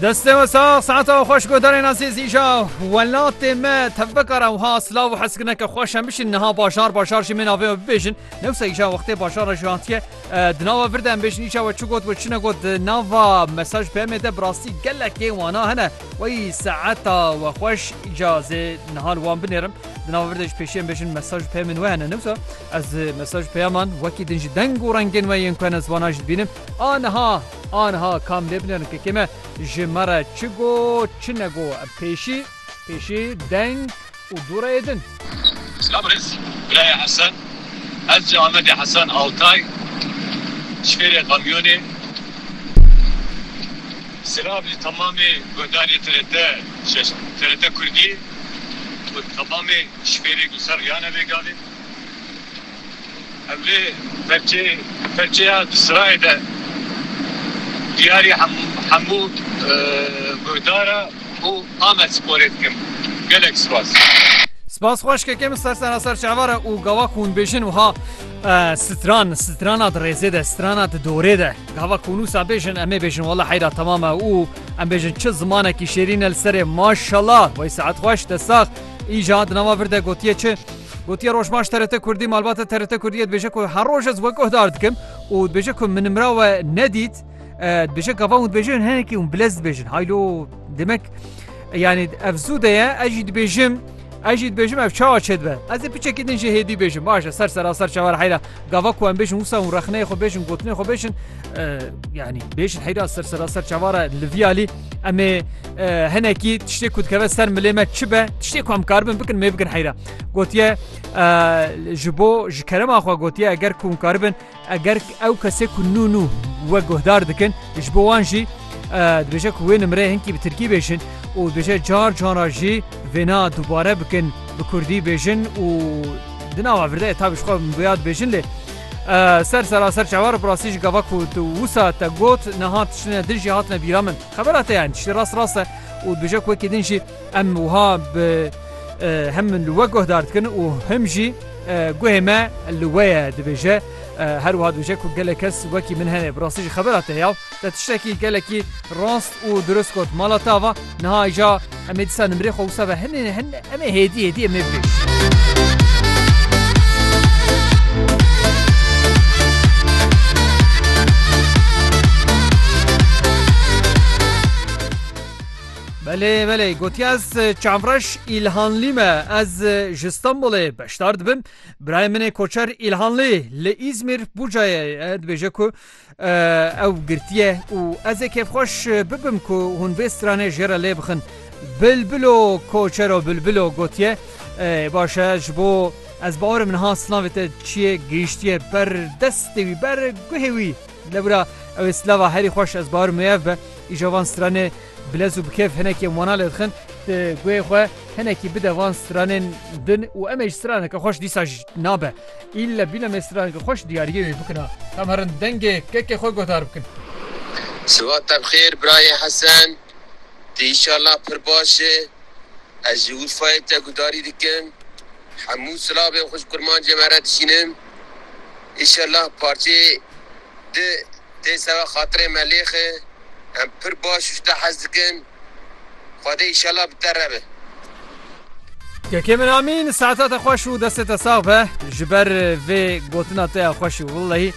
Destê we sax saeta we xweş guhdarên ezîz îja welatê me tevbeka re wiha silav û heskineke xweş em bişin niha bajar bajar jî min avê bibêjin newsa îja wextê bajara ji hatiye di nava vir de em bêjin îja we çi got we çine got di nava mesaj bi emê de bi rastî gelekê wana hene wey saeta we xweş îja zê niha li wan binêrim di nava vir de ji pêşê em bêjin mesaj pê min we hene newsa ez mesaj peyaman wekî din ji deng û rengên we yên ku hene ziwana jî dibînim A niha, a niha kam lê bilind kekê me ji me re çi got, çi negot. Pêşî, pêşî deng û dû re yê din. Selam Rêz Birayê Hesen, ez ji Amedê Hesen Altay, ji fêrê kamyonê. Selam ji temamê gundarê TRT şeş, TRT Kurdî û temamê ji fêrê Gulser Riyane bê gavê. Em vê perçê perçeya di sirayê de diyarî hemû guhdara û Amedsporê dikim. Gelek spas. Spas xweşkeke min ser sena ser çavara û gava ku hûn bêjin wiha stran strana di rêzê de strana di dorê de gava ku nûsa bêjin em ê bêjin wala heyra temam e û em bêjin çi zimanekî şêrîn e li serê maşala wey saet xweş te sax îja di nava vir de gotiye çi Gotiye Rojbaş TRT Kurdî malbata TRT Kurdiyê dibêje ku her roj ez wek guhdar dikim û dibêje ku min mira we nedît dibêje gava hûn dibêjin hinekî hûn bilez dibêjin haylo demek yanî ev zû de ye ez jî dibêjim ez jî dibêjim ev çawa çê dibe ez ê piçekî din jê hêdî bêjim baş e ser seraser çawer heyra gava ku em bêjin wisa hûn rexneyê xwe bêjin gotinê xwe bêjin yanî bêjin heyra ser seraser çavar e li viyalî Em ê hinekî tiştê ku dikeve ser milê me çi be tiştê ku em karibin bikin mê bikin heyra gotiye ji bo ji kerema xwe gotiye eger ku karibin eger ew kesê ku nû nû we guhdar dikin ji bo wan jî dibêje ku wê nimre hinkî bi tirkî bêjin û dibêje car cara jî vêna dubare bikin bi kurdî bêjin û di nava virde tabî xwe biya dibêjin lê Ser seraser çawa re bi rastî jî gava ku tu wisa te got niha tiştine din jî hatine bîra min. Xebera te yani tiştê rast rast e û dujek wekî din jî em wiha bi hem min li we guhdar dikin û him jî guhê me li we ye dibêje. Her wiha dibêje ku gelek kes wekî min hene. Bi rastî jî xebera te ya. Te tiştekî gelekî rast û dirust got. Mala ta va, niha îja em ê dîsa nimrê xwe wisa ve hinê hin em ê hêdî hêdî em ê bibê. Belê belê gotiye ez çavreş îlhanlî me ez ji Stenbolê beşdar dibim. Birayê min ê koçer îlhanlî li Îzmîr Bucayê dibêje ku Ew girtiye û ez ê kêfxweş bibim ku hûn vê stranê jê re lê bixin. Bilbilo koçero bilbilo gotiye, Baş e ji bo ez bawer im niha silavê te çiye gihiştiye ber destê wî, ber guhê wî. Lê wira ew ê silava herî xweş ez bawer im wê ev be. Îja van stranê bi lez û bi kêf hinekî em wana lê dixin. Ti guhê xwe hinekî bide van stranên din û em ê ji straneke xweş dîsa jî nabe. Îlle bîne me strange xweş diyariyê wê bikina. Em herin dengê kekê xwe guhdar bikin. Sibat te bi xêr birayê Hesen. Tu înşallah pir baş î. Ez ji Urfayê te guhdarî dikim. Hemû silavên xwe ji kurmancê me re dişînim. Înşallah parçeyê du tê seba xatirê me lêx î. Em pir baş û ji te hez dikin. Xwedê îşellah bi te re be. Kekê min Amîn saeta te xweş û destê te sax be ji ber vê gotina te ya xweş û willehî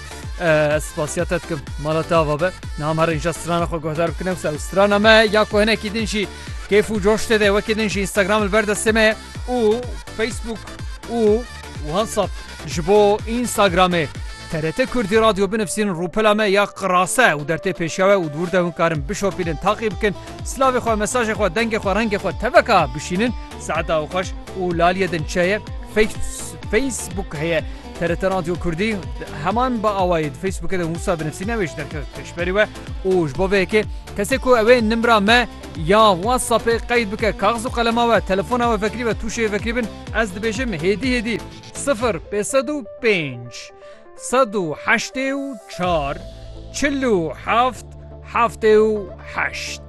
ez spasiya te dikim mala te ava be niha me re înşa strana xwe guhdar bikin ew ser û strana me ya ku hinekî din jî kêf û coş tê de wekî din jî Instagram li ber destê me ye û Facebook û Whatsapp ji bo Instagramê. TRT Kurdî Radyo binivîsîn rûpela me ya qirase û dertê pêşewe û dûr de hûn karin bişopînin taqî bikin silavê xwe mesajê xwe dengê xwe rengê xwe teveka bişînin saeta û xweş û laliye din çeye Facebook heye TRT Radyo Kurdî heman bi awayê di Facebookê de wisa binivîsîn ew ê ji derke pêşberî we û ji bo vê yekê kesê ku ew ê nimra me Ya WhatsAppê qeyd bike kaxiz û qelema we, telefona we vekirî ve tûşeyê vekirî bin, ez dibêjim hêdî hêdî sifir pê sed û pênc sed û heştê û çar çil û heft heftê û heşt.